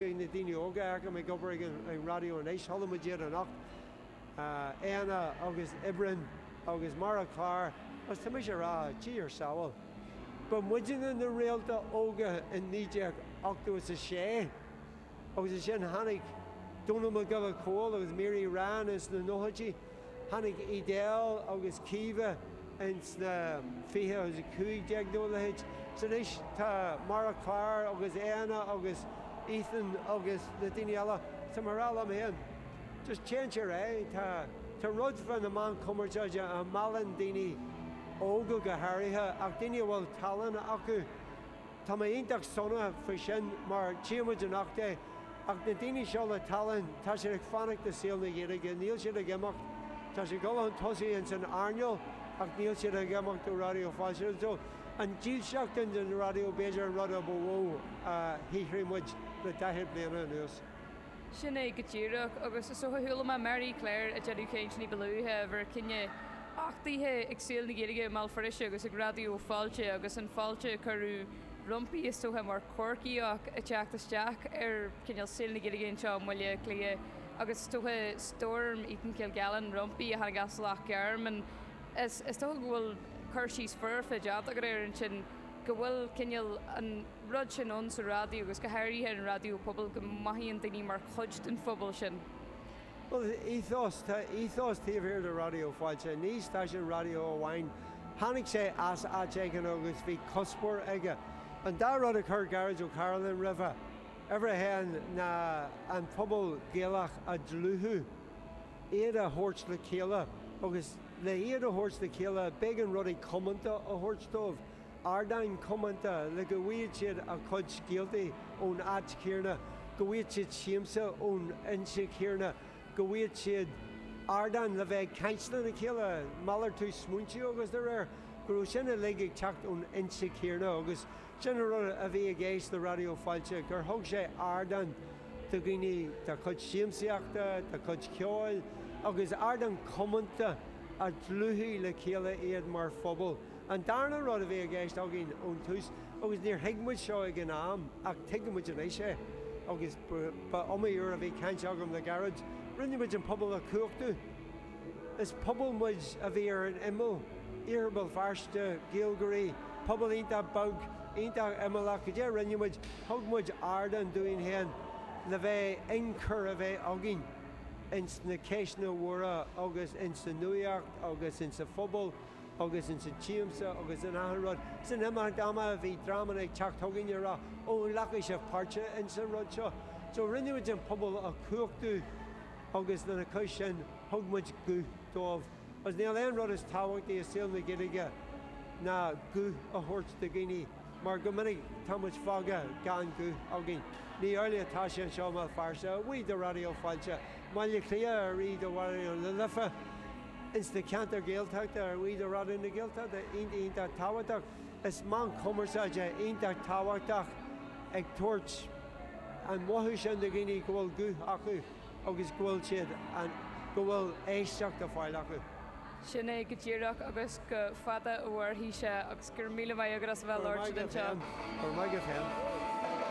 Beidh na daoine óga agam ag obair ag an raidió anois. Chuala muid iad anocht, Éanna agus Oibreann agus Máire Clár agus tá mise ag rá a tsamhail. Ba muidinne na réalta óga i 1986 agus ansin tháinig Dónall Mac Giolla Chomhaill agus Mary Ryan sna nóchaidí. Tháinig Edel agus Caoimhe ins na 20 15 nó a leithéid. So anois tá Máire Clár agus Éanna agus Ethan agus na daoine eile. Tá mé a rá liom féin, just téann sé ar aghaidh. Tá, tá rud fá na meán cumarsáide a mheallann daoine óga go háirithe ach daoine a bhfuil tallann acu. Tá mé iontach sona faoi sin mar tchíonn muid anocht é. Ach na daoine seo le tallann, tá siad ag fanacht i saol na Gaeilge, níl siad ag imeacht. Tá siad ag dul chun tosaigh ins an airneál ach níl siad ag imeacht ó Raidió Fáilte. So, an dílseacht sin don raidió b'fhéidir an rud a ba mhó a shaothraigh muid le daichead bliana anuas. Sin é go díreach, agus is dócha chuala mé Mary Claire ag déanamh caint ní ba luaithe a bhfuair cinneadh achtaithe ag saol na Gaeilge i mBéal Feirste agus ag Raidió Fáilte agus an fháilte a cuireadh roimpi is dócha mar Chorcaíoch ag teacht isteach ar chineál saol na Gaeilge anseo i mBaile Átha Cliath agus is dócha Storm Eaton-Kilgallen roimpi a tháinig as Loch Garman is dócha go bhfuil cur síos foirfe déanta agat air ansin. go bhfuil cineál an rud sin ann sa raidió agus go háirithe an raidió pobail, go mothaíonn daoine mar chuid den phobal sin. Tá ethos taobh thiar de Raidió Fáilte. Ní stáisiún raidió amháin. Tháinig sé as áit éigin agus bhí cuspóir aige. An dá rud a chuir Gearóid Ó Cairealláin roimhe, uimhir a haon, ná an pobal Gaelach a dhlúthú, Iad a thabhairt le chéile agus le iad a thabhairt le chéile b'éigean rudaí comónta a thabhairt dóibh, ardáin chomónta le go bhfaighead siad a chuid scéaltaí ón áit chéarna, go bhfaighead siad siamsa ón fhoinse chéarna, go bhfaighead siad ardán le bheith ag caint lena chéile, malartú smaointe agus de réir, go raibh sin uilig ag teacht ón fhoinse chéarna agus. Sin an rud a bhí i gceist le Raidió Fáilte, gur thug sé ardán do dhaoine dá chuid siamsaíochta, dá chuid ceoil agus ardán comónta a dlúthaigh le chéile iad mar phobal. An darna rud a bhí i gceist againn ón tús, agus níor thuig muid seo ag an am ach tuigeann muid anois é agus ba iomaí uair a bhí caint agam le Gearóid, rinne muid an pobal a chumhachtú. Is pobal muid a bhí ar an imeall, Iarthar Bhéal Feirste, Gaeilgeoirí, pobal iontach beag, iontach imeallach, cad é a rinne muid, thug muid ardán dúinn féin le bheith ionchur a bheith againn ins na ceisteanna mhóra agus ins an nuaíocht agus ins an phobal agus ins an tsiamsa agus in achan rud. San imeacht ama bhí dreamanna ag teacht chugainn ag rá Ó, an nglacfaidh sibh páirt ins an rud seo? So rinne muid an pobal a chumhachtú. agus lena chois sin thug muid guth dóibh agus níl aon rud is tábhachtaí i saol na Gaeilge ná guth a thabhairt do dhaoine mar go minic tá muid fágtha gan guth againn. Ní amhlaidh atá sé anseo i mBéal Feirste, a bhuí do Raidió Fáilte, mBaile Cliath, a bhuí do Raidió na Life, ins na ceantair Ghaeltachta, a bhuí do Raidió na Gaeltachta, iontach, iontach tábhachtach. Is meán cumarsáide iontach tábhachtach. ag tabhairt an mothú sin do dhaoine go bhfuil guth acu agus go bhfuil siad ann, go bhfuil éisteacht á fáil acu. Sin é go díreach agus go fada a mhairfidh sé agus go raibh míle maith agat as a bheith labhairt anseo. Go raibh maith agat féin.